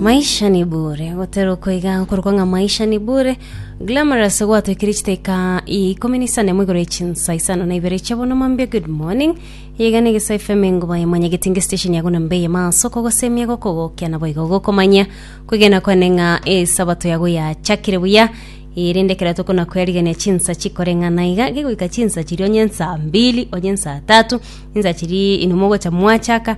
maisha ni bure gotera okoiga nkorokwa ng'a maisha ni bure glamorous gwatwekire chiteka ikumi n'isano emo igoro echinsa isano na ibere chia bono mambia good morning iga ni gisa fm engoba emanya getinge station yago na mbeye maso kogosemia gokogokia na boigo gokomanya kwegena kwane ng'a esabato yago yachakire buya erinde kera tokona kwerigania chinsa chikoreng'ana iga gegoika chinsa chiria onye nsa mbili onye nsa tatu insa chiria inomogocha mwachaka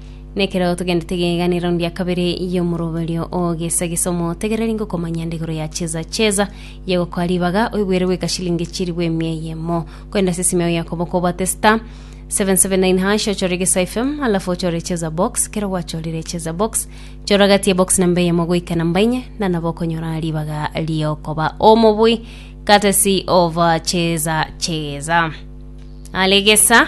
Nekero togendete geganera raundi ya kabere y'omoroberio o gesa gesa omotegereri ngokomanya nde igoro ya cheza cheza yegokoa ribaga oigwere goika shilingi chirigwe emia eyemo kwenda ase esime yao ya koboko obate star 779 hash ochore gesa fm alafu ochore cheza box kero gwachorire cheza box chora gati ya box namba eyemo goika namba inye na nabo okonyora ribaga riokoba omobui katesi ova cheza cheza alegesa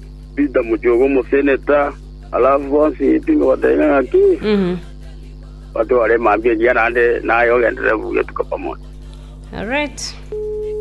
Pita mochie omoseneta, alafu bonsi tinga bateba ng'aki, batware emambia engiya naende naye ogenderere buya tuka pamoja. Alright.